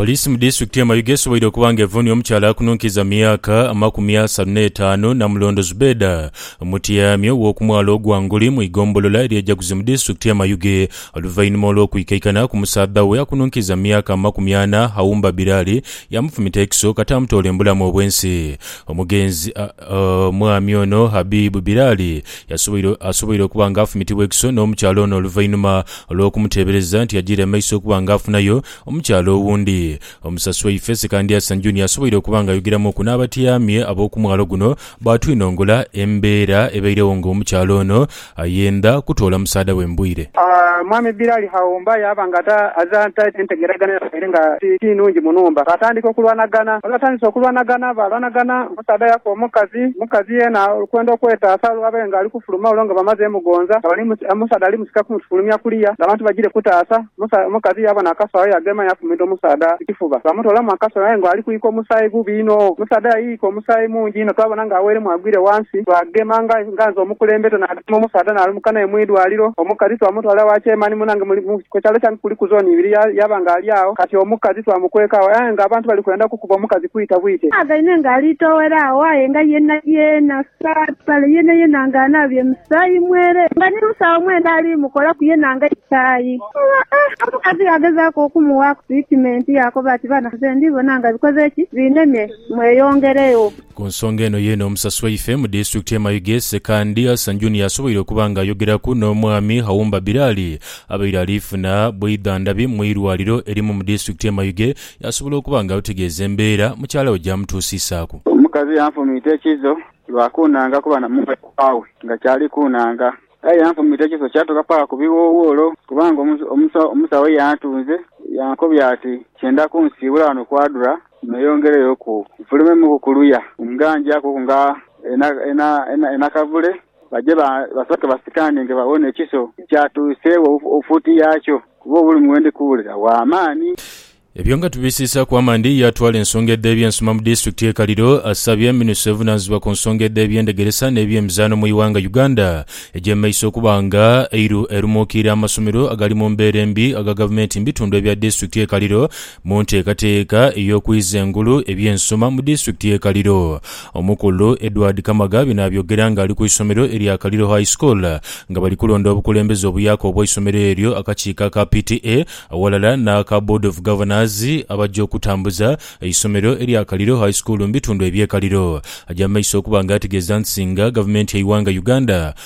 Poliisi mu disitulikiti y'e Mayuge esoboire okuba nga evuunhia omukyala akununkiiza mu myaka amakumi asanu n'etaanu Namulondo Zubeda omutyami ow'oku mwalo ogwa Nguli mu igombolola ery'e Jaguzi mu disitulikiti y'e Mayuge oluvainhuma olw'okwikaikana ku musaadha we akununkiiza mu myaka amakumi ana Aumba Birali yaamufumita ekiso kata amutoola embulamu obw'ensi. Omugenzi Omwami ono Habib Bilali yasoboire asoboire okuba nga afumitibwa ekiso n'omukyala ono oluvainhuma olw'okumuteebereza nti ajiire mu maiso okuba nga afunayo omukyala owundi. Omusasi waife Sekandiasan Junior asoboire okuba nga ayogeramuuku n'abatyaami ab'okumwalo guno baatwinongola embeera ebairegho nga omukyala ono Aye ndha kutoola musaadha we mbwire. Mwami Bilali Haumba yaaba nga ate azira nte entegeragana yabaire nga ti nungi mu nhumba. Baatandika okulwanagana. Bwe baatandise okulwanagana, baalwanagana, omusaadha yafa omukazi. Omukazi yeena okwenda okwetaasa olwo abe ng'ali kufuluma olwo nga bamaze mugonza, nga bali, omusaadha ali musika kumutufulumya kuliya ng'abantu bagiire kutaasa. Musa, omukazi yaaba n'akasawo yaagema yaafumita omusaadha ku kifuba. Baamutoolamu akasawo aye ng'ali kwika omusaayi gubi inho. Omusaadha yayiika omusaayi mungi inho twabona ng'aweeremu agwire ghansi. Twaagema nga nga nze omukulembete naagema omusaadha naalumuka naye mu idwaliro. Omukazi twamutwala wa Chairman munange muli mu ku kyalo kyange kuliku zooni ibiri ya yaaba ng'ali agho kati. Omukazi twamukweka agho aye ng'abantu bali kwenda kukuba omukazi kwita bwite. Twaagaine ng'ali toowere agho aye nga yeenayeena. Kale yenayena nga anaabye musaayi mwere, nga ni mu saagho mwenda ali mukolaku yena nga ikaayi. Omukazi yaagezaaku okumuwaaku tiritimenti, yaakoba ati, Bana, nze ndi bona nga bikoze ki? Binemye. Mweyongeregho. Ku nsonga eno yeene, omusasi waife mu disitulikiti y'e Mayuge, Ssekandi Hassan Junior asoboire okuba nga ayogeraku n'omwami Haumba Bilali abaire ali funa bwidhandhabi mu irwaliro erimu mu disitulikiti y'e Mayuge Asobola okuba nga alutegeeza embeera mukyala we gy'amutuusisaaku. Omukazi yanfumiita ekiso lwa kuunanga kuba na mwekwa we nga kyali kuunanga. Aye yanfumiita ekiso kyatuuka paka ku biwowolo kubanga omusawo yantunze yankobya ati kyenda kunsiibula ghano kwadhura neyongereyo ku nfulumemuku ku luya nga njakuku nga enakavule Baje basooke basikane nga babona ekiso kyatuuseegho fuuti yaakyo, kuba obulumi bwe ndi kuwulira bwa maani. Ebyo nga tubisiisaaku amaani, ye atwala ensonga edh'ebyensoma mu disitulikiti y'e Kaliro asabye minisita evunaanyizibwa ku nsonga edh'eby'endegeresa n'eby'emizaano mu ighanga Uganda egy'emaiso okuba nga eiru erumuukiire amasomero agali mu mbeera embi aga gavumenti mu bitundu ebya disitulikiti y'e Kaliro Mu nteekateeka ey'okwiza engulu eby'ensoma mu disitulikiti y'e Kaliro, Omukulu Edward Kamaga bino abyogera nga ali ku isomero erya Kaliro High School nga bali kulonda obukulembeze obuyaaka obwa isomero eryo akakiiko aka PTA aghalala n'aka Board of Governors abaja okutambuza eisomero erya Kaliro High School mu bitundu eby'e Kaliro. Aja mu maiso okuba nga ategeeza nti singa gavumenti y'eighanga Uganda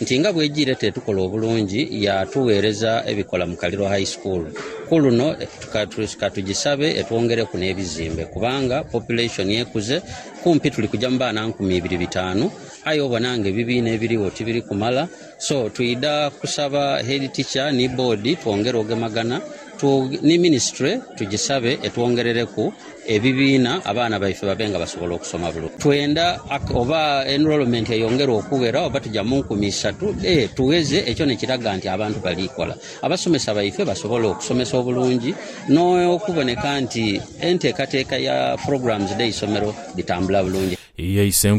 nti nga bwejiire tetukola obulungi yaatugheereza ebikola mu Kaliro High School. Ku luno ka tugisabe etwongereku n'ebizimbe kubanga population ekuze, kumpi tuli kuja mu baana nkumi ibiri bitaanu aye obona ng'ebibiina ebirigho tibiri kumala so twidha kusaba Head Teacher ni Board twongere ogemagana Tu, ni minisitule tugisabe etwongerereku ebibiina abaana baife babe nga basobola okusoma bulungi. Twenda ak, oba enrolment eyongere okughera oba tuja mu nkumi isatu. E, tugheze ekyo ni kiraga nti abantu bali kola. Abasomesa baife basobola okusomesa obulungi n'okuboneka nti enteekateeka ya programs dh'eisomero dhitambula bulungi. Ye Isenkulu.